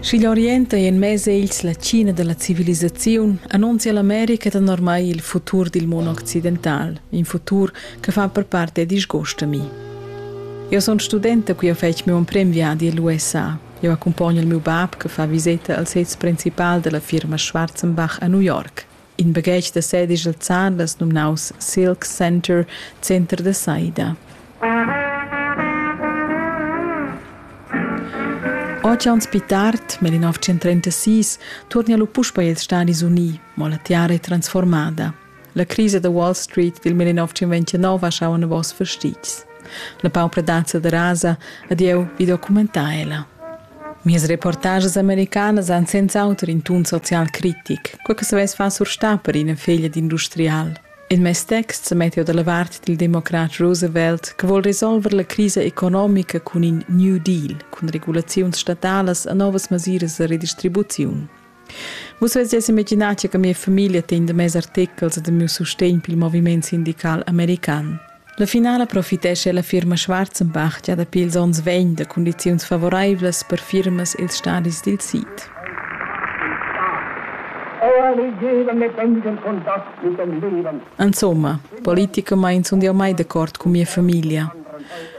Sch'igl Orient ei en mez egls la China dalla civilisaziun, annunzia l'America danormai il futur dil mondo occidental, in futur che fa per parte disgust a mi. Eu sun studenta qui ho fetg meu emprem viadi all'USA. Eu accompagno il meu bab che fa viseta al sez principal della firma Schwarzenbach a New York. In baghetg da sedigl zan las numnaus Silk Center, Center da Saida. Oceans pi tard, nel 1936, torna lu puspa ils Stadis Uni, mo la tiara è transformada. La crisa da Wall Street del 1929 ha schau novos fastitgs. La paupradazza da rasa, adieu, vi documentar ella. Mias reportages americanas han senz'auter in tun social critic, quei che savess far surstar per ina feglia d'industrial. In mes text sa metta dalla vart dil democrat Roosevelt che vuol resolver la crisa economica cun in New Deal, cun regulaziuns statalas e novas masiras da redistribuziun. Vus vesias imaginar che mia famiglia tegn de mes artechels e de miu sustegn pil moviment sindical american. La finala profitescha la firma Schwarzenbach gia dapi ils onns vegn da condiziuns favoreivlas per firmas ils stadis dil sid. Insomma, politicamain sun jau mai d'accord cun mia famiglia.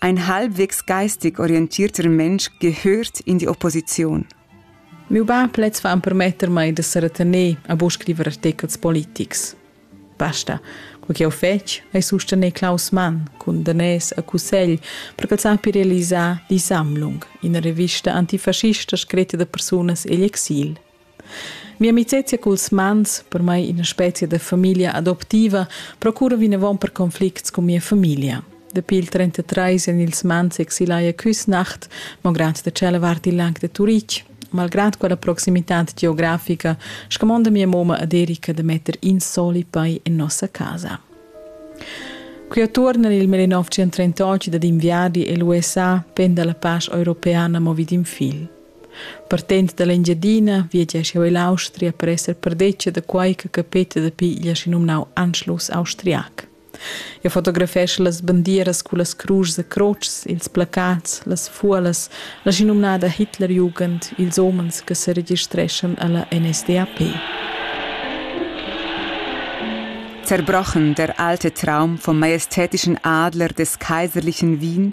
Ein halbwegs geistig orientierter Mensch gehört in die Opposition. Miu bab lez fa empermetter mei da seretener a buca scriver artechels politics. Basta, quei che jeu fetg ei sustener Klaus Mann cun danès a cussegl per ch'el sappi realisar Die Sammlung, ina revista antifascista scritta da persunas egl exil. Mia amicezia culs mans, per mai ina spezia da famiglia adoptiva, procura vinavon per conflicts cun mia famiglia. Dapi il 33 en ils mans exilai a Küsnacht, malgrad da cela vart il lag de Turitg. Malgrad quella proximitad geografica, scamonda mia moma ad Erika da metter in soli pei en nossa casa. Qui attorna nel 1938 dad inviargli e l'USA penda la pace europeana movi d'in fil. Partend dall'Engiadina viegia scheu ell'Austria per esser perdetga da quei che capeta dapi igl aschi numnau Anschluss austriac. Eu fotografescha las bandieras cu las cruschs e crotschs, ils placats, las fuolas, l'aschinumnada Hitlerjugend, ils homens che se registreschan alla NSDAP. Zerbrochen der alte Traum vom majestätischen Adler des kaiserlichen Wien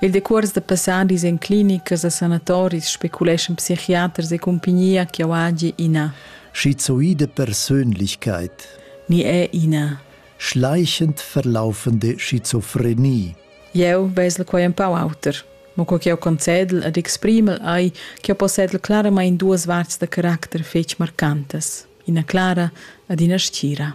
Il decuors da passadis en clinicas e sanatoris speculeschan psichiaters e cumpagnia ch'jau hagi ina. Schizoide Persönlichkeit. Ni è ina. Schleichend verlaufende Schizophrenie. Jeu vesel quei empau auter. Mo co ch'jau concedel ed exprimel ei ch'jau possedel claramain duas varts da caracter fetg marcantas, ina clara ed ina stgira.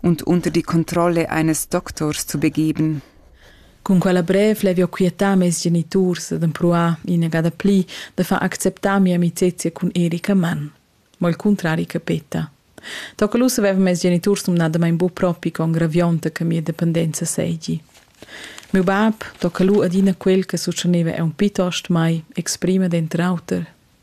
und unter die Kontrolle eines Doktors zu begeben. Cun quella brev l'hai eu quietà meis geniturs ed empruà inagada pli da far acceptar mia amicezia cun Erika Mann. Ma il cuntrari che petta. Tocca lu savev mes geniturs numnadamain bu propi con gravionta che mia dependenza seigi. Meu bab tocca lu adina quel che succhaneva aunc pitost mai, exprima denter auter.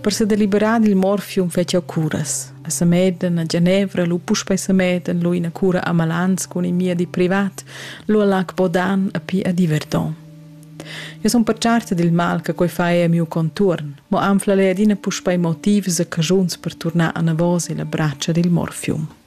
Per sedeliberar dil morfium fetschia curas. A Samedan, a Genevra, lu puspei Samedan, lu ina cura a Malans cun in miedi privat, lu a Lac Bodan a pi a Diverton. Eu sun pertscharta dil mal che quei fa ei a miu contuorn, mo anfla lei adina puspei motivs e caschuns per turnar anavos illa bratscha dil morfium.